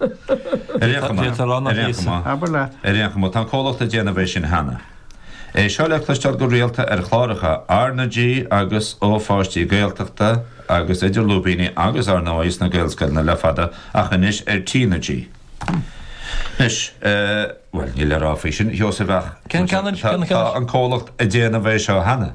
Ar aon chuma, ar aon chuma, Abair leat. ar aon chuma, tá an comhlacht ag déanamh é sin cheana. É seo le cloisteáil go rialta ar chláracha R na G agus ó pháistí Gaeltachta agus idir lúibíní agus ar ndóigh sna Gaelscoileanna le fada ach anois ar T na G. Anois, bhuel, níl le rá faoi sin, a Sheosaimh, ach, tá an comhlacht ag déanamh é seo cheana.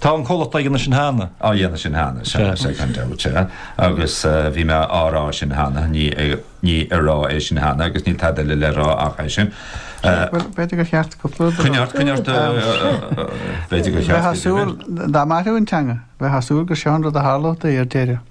Tá an comhlacht ag déanamh sin cheana. Á dhéanamh sin cheana, sea, sea, gan dabht, sea. Agus bhí mé á rá sin cheana, ní ag rá é sin cheana agus níl tada eile le rá ach é sin. Bhuel, b'fhéidir gur cheart cúpla rud a rá. Coinnigh ort, coinnigh ort, b'fhéidir gur cheart. Bheifeá ag súil, dá mairfeadh an teanga, bheifeá ag súil gur seo an rud a tharlódh di ar deireadh.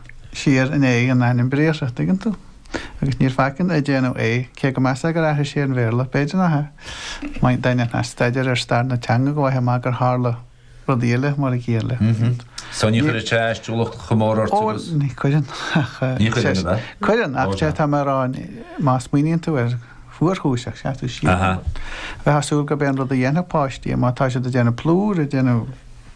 thiar in éag an ainm briathartha, an dtuigeann tú? Agus níor faic ann ag déanamh é, cé go measfá gur aithris ar an Bhéarla, b'fhéidir nach ea? Maíonn daoine atá ag staidéar ar stair na teanga go bhfaighfeá amach gur tharla rudaí eile mar a chéile. So ní chuireann sé aistiúlacht chomh mór ort agus? Ó, ní chuireann, ach. Ní chuireann, an ea? Cuireann, ach sé atá mé a rá, má smaoiníonn tú air go fuarchúiseach, seasann tú siar, bheifeá ag súil gurb é an rud a dhéanfadh páistí, má tá siad ag déanamh plúr, ag déanamh,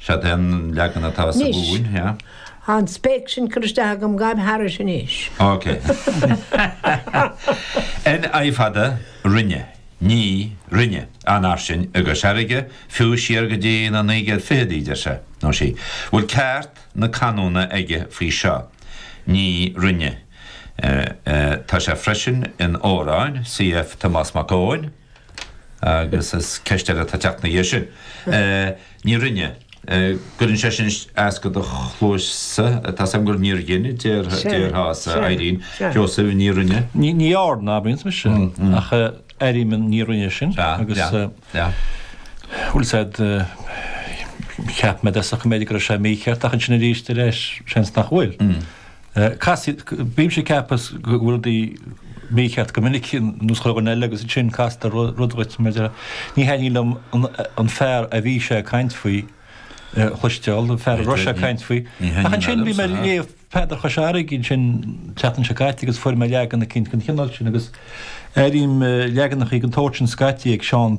Seo é an leagan atá sa Mhumhain, yeah. Tá an spéic sin curtha isteach agam, gabh thairis anois. Ok. N, I fada, rinne, Ní, rinne, an ach sin, i gCois Fharraige, fiú siar go dtí na naoi gcéad fichidí, deir sé, nó sí. Bhfuil ceart na canúna aige faoi seo? Ní, rinne, Eh, eh, tá sé freisin in amhráin, Cf. Tomás Mac Eoin. agus is ceist eile atá ag teacht ina dhiaidh sin. Ní rinne. Cuireann sé sin as do do chluasa. Tá a fhios agam gur níor dhein a déarfása, Irene. Seosamh, Ní rinne. Ní dhearna, a abraíonn mise, ach airím Ní rinne sin, agus bhfuil a fhios agat, cheap mé de sa choiméide go raibh sé mícheart, ach ansin arís eile, seans nach bhfuil. Bímse ag ceapadh go bhfuil rudaí mícheart go minic ar nós leagan eile agus ansin castar rud dhuit mar a déarfá. Ní thaitníonn liom an fear a bhí sé ag caint faoi a chloisteáil, an fear a raibh sé ag caint faoi. Ach ansin bhí mé ag léamh Peadar Chois Fharraige ansin an tseachtain seo caite agus fuair mé leagan eicínt den chineál sin agus airím leaganachaí den tsórt sin scaití ag Seán